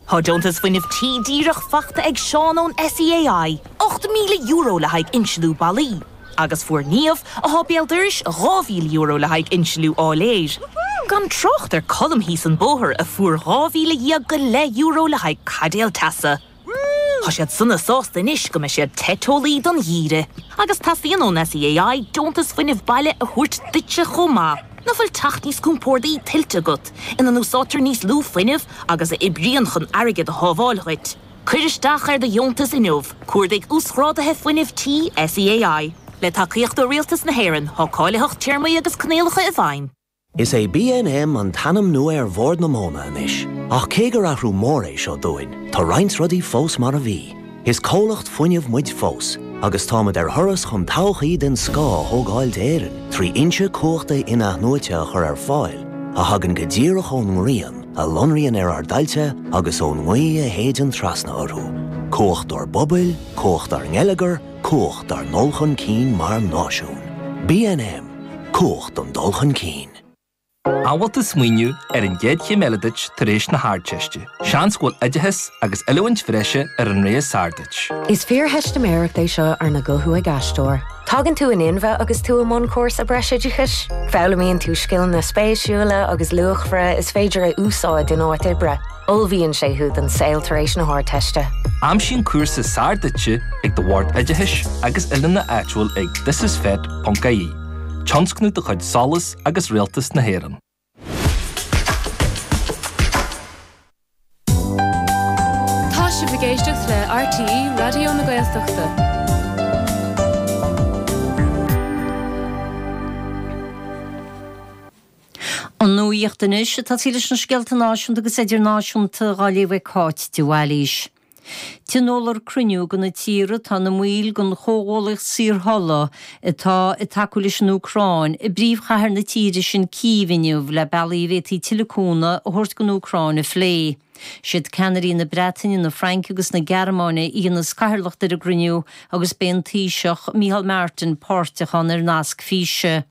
Tá deontas Fuinneamh Tí díreach faighte ag Seán ón SEAI, €8,000 le haghaidh insealú ballaí, agus fuair Niamh, atá béal dorais, €2,000 le haghaidh insealú áiléir, gan trácht ar Colm thíos an bóthar a fuair €12,000 go leith le haghaidh caidéal teasa. Tá siad sona sásta anois go mbeidh siad te teolaí don gheimhreadh agus teastaíonn ón SEAI deontas fuinnimh baile a thabhairt duitse chomh maith. Nach bhfuil teach níos compórdaí tuillte agat, ina n-úsáidtear níos lú fuinnimh agus a oibríonn chun airgead a shábháil dhuit? Cuir isteach ar do dheontas inniu, Cuardaigh Uasghrádaithe Fuinnimh Tí SEAI. Le tacaíocht ó Rialtas na hÉireann, tá cáilitheacht téarmaí agus coinníollacha i bhfeidhm. Is é BNM an t-ainm nua ar Bhord na Móna anois, ach cé gur athrú mór é seo dúinn, tá roinnt rudaí fós mar a bhí. Is comhlacht fuinnimh muid fós, agus táimid ar thuras chun todhchaí den scoth a thógáil d'Éirinn trí fhoinse cumhachta in-athnuaite a chur ar fáil a thagann go díreach ón ngrian a lonraíonn ar ár dtailte agus ón ngaoth a shéideann trasna orthu. Cumhacht ár bpobail, cumhacht ár ngeilleagar, Cumhacht ár ndul chun cinn mar náisiún. BNM, Cumhacht an dul chun cinn. An bhfuil tú ag smaoineamh ar an gcéad chéim eile duit tar éis na hArdteiste. Seans go bhfuil oideachas agus oiliúint bhreise ar an rogha is fearr duit. Is fíortheistiméireacht é seo arna guthú ag aisteoir. Tagann tú in inmhe agus tú i mbun cúrsa breisoideachais. Foghlaimíonn tú scileanna spéisiúla agus luachmhara is féidir a úsáid in áit oibre. Ullmhaíonn sé thú don saol tar éis na hArdteiste. Aimsigh an cúrsa is fearr duitse ag do Bhord Oideachais agus Oiliúna áitiúil ag thisisfet.ie, tionscnamh de chuid SOLAS agus Rialtas na hÉireann. Tá sibh ag éisteacht le RTÉ Raidió na Gaeltachta. An nuaíocht anois agus i dtosach leis na scéalta náisiúnta agus idirnáisiúnta dhá léamh ag Cáit de Bhailís. Tionólfar cruinniú de na tíortha atá ina mbaill den Chomhghuallaíocht Saorthola atá ag tacú leis an Úcráin, i bpríomhchathair na tíre sin Cív inniu le bealaí a bhféadfaí tuilleadh cúnamh a thabhairt don Úcráin a phlé. Siad ceannairí na Breataine, na Fraince agus na Gearmáine a dhéanas cathaoirleacht ar an gcruinniú agus beidh an Taoiseach, Micheál Martin páirteach ann ar nasc físe.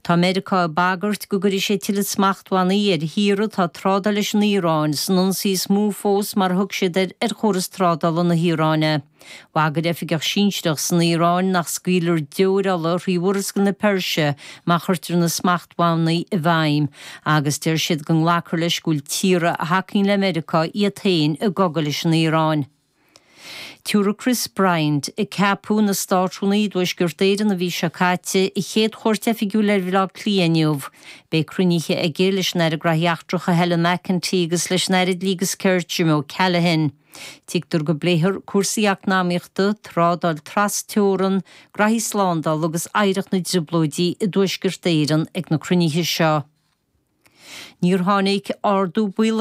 Tá Meiriceá ag bagairt go gcuirfidh sé tuilleadh smachtbhannaí ar thíortha atá ag trádáil leis an Iaráin, san ionsaí is mó fós mar a thug siad air ar chóras trádála na hIaráine. Bhagair oifigeach sinsearach san Iaráin nach scaoilfear deoir ola thrí Mhurascaill na Peirse má chuirtear na smachtbhannaí i bhfeidhm, agus deir siad go nglacfar leis go bhfuil tíortha a thacaíonn le Meiriceá iad féin i gcogadh leis an Iaráin. Tabharfaidh Chris Bryant, a ceapadh ina Státrúnaí i dTuaisceart Éireann an mhí seo caite, a chéad chuairt oifigiúil ar Bhaile Átha Cliath inniu. Beidh cruinnithe aige leis an Aire Graithí Eachtracha Helen McEntee agus leis an Aire Dlí agus Cirt, Jim O'Callaghan. Tuigtear go bpléifear cúrsaí eacnamaíochta, trádáil tras-teorann, graithí slándála agus oidhreacht na dTrioblóidí i dTuaisceart Éireann ag na cruinnithe seo. Níor tháinig ardú ball ar.